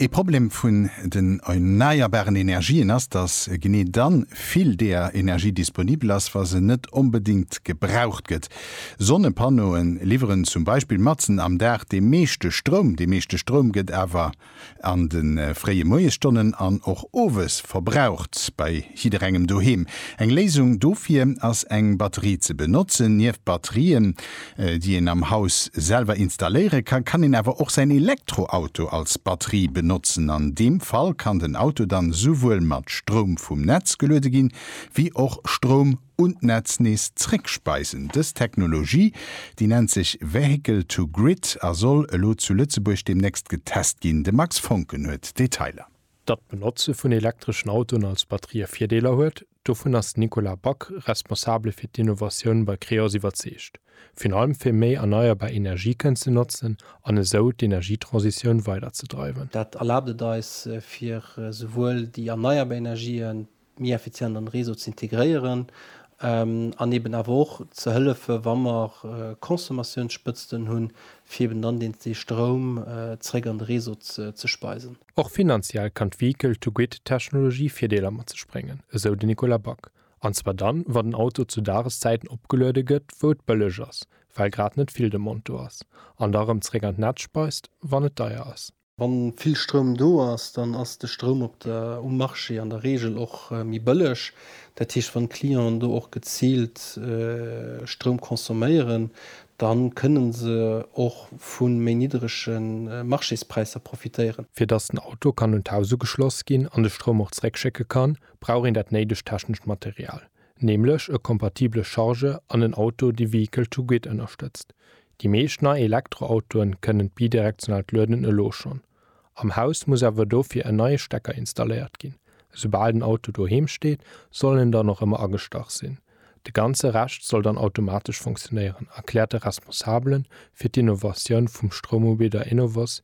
Ee Problem vun den erneierbaren Energien ass, datt genee dann vill deeër Energie disponibel ass, wa se net onbedéngt gebraucht gëtt. Sonnepannoe liwweren zum Beispill matzen am Dag dee meeschte Stroum. Dee meeschte Stroum gëtt awer an de fréie Moiesstonnen an och owes verbraucht bei jidderengem doheem. Eng Léisung dofir ass eng Batterie ze benotzen. Nieft Batterien déi een am Haus selwer installéiere kann, kann een awer och säin Elektroauto als Batterie benotzen. An deem Fall kann den Auto dann esouwuel mat Stroum vum Netz geluede ginn, wéi och Stroum un d'Netz nees zréckspeisen. Dës Technologie, déi nennt sech Vehicle to Grid a soll elo zu Lëtzebuerg deemnächst getest ginn. De Max Foncken huet d'Detailer. Datt d'Benotze vun elektreschen Autoen als Batterië Virdeeler huet, dovun ass den Nicolas Back, Responsabele fir d'Innovatioun bei Creos, iwwerzeegt. Virun allem fir méi erneierbar Energie kënnen ze notzen an esou d'Energietransitioun weiderzedreiwen. Dat erlaabt et eis, fir esouwuel déi erneierbar Energien, méi effizient an de Réseau ze integréieren an eben awer och ze hëllefen, wa mer Consommatiounsspëtzten hunn, fir eben dann deen dee Stroum zeréck an de Réseau ze speisen. Och finanziell kann d'Vehicle-to-Grid-Technologie Virdeeler mat sech bréngen, esou de Nicolas Back, an zwar dann, wa den Auto zu Dageszäiten opgeluede gëtt, wou et bëlleg ass, well grad net vill Demande do ass, an da erëm zeréck an d'Netz speist, wann et deier ass. Wann vill Stroum do ass, dann ass de Stroum op der, um Marché an der Regel och méi bëlleg. Dat heescht, wann d'Clienten do och geziilt Stroum consomméieren, dann kënnen se och vu méi niddrege Marchéspräisser profitéieren. Fir dass den Auto kann un d'Haus ugeschloss ginn an de Stroum och zeréckschécke kann, brauch een dat néidegt technescht Material. nämlech e kompatible Charge an en Auto dee Vehicle to Grid ënnerstëtzt. Déi meescht nei Elektroautoen kënnen d'bidirektionaalt Lueden elo schonn. Am Haus muss awer dofir en neie Stecker installéiert ginn. Esoubal den Auto doheem steet, soll en dann och ëmmer agestach sinn. De ganze Rescht soll dann automatesch funktionéieren, erkläert de Responsabele fir d'Innovatioun vum Stroumubidder Enovos,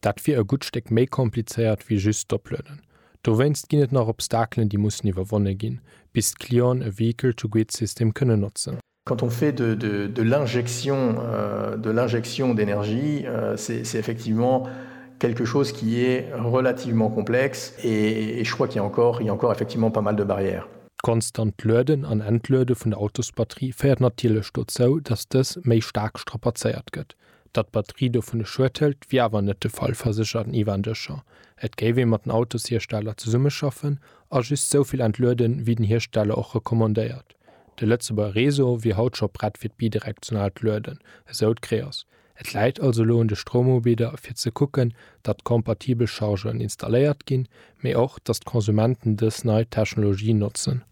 Dat wier e gutt Stéck méi komplizéiert wéi just d'Oplueden. Dowéinst ginn et nach Obstakelen, déi mussen iwwerwonne ginn, bis d'Clienten e Vehicle-to-Grid-System kënnen notzen. Quand on fait de de l'injection de l'injection d'énergie, c'est c'est effectivement quelque chose qui est relativement complexe et et je crois qu'il y a encore il y a encore effectivement pas mal de barrières. D'konstant Lueden an Entluede vun der Autosbatterie féiert natierlech dozou, dass dës méi staark strapazéiert gëtt. Datt d'Batterie dovunner Schued hëlt, wier awer net de Fall, verséchert den Ivan Deschamp. Et géif ee mat den Autoshiersteller zesummeschaffen a just sou vill entlueden, wéi den Hiersteller och recommandéiert. De Lëtzebuerger Réseau wier haut scho prett fir d'bidirektionaalt Lueden, esou d'Creos. Et läit also elo un de Stroumubidder, fir ze kucken, datt kompatibel Chargeren installéiert ginn, mee och dass d'Konsumenten dës nei Technologie notzen.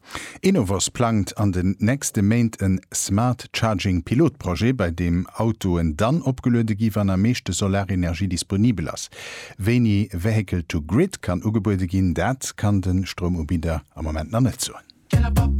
Enovos plangt an den nächste Méint en Smart Charging Pilotprojet, bei deem Autoen dann opgeluede gi wann am meeschte Solarenergie disponibel ass. Wéini Vehicle to Grid kann ugebuede ginn, dat kann de Stroumubidder am Moment nach net soen.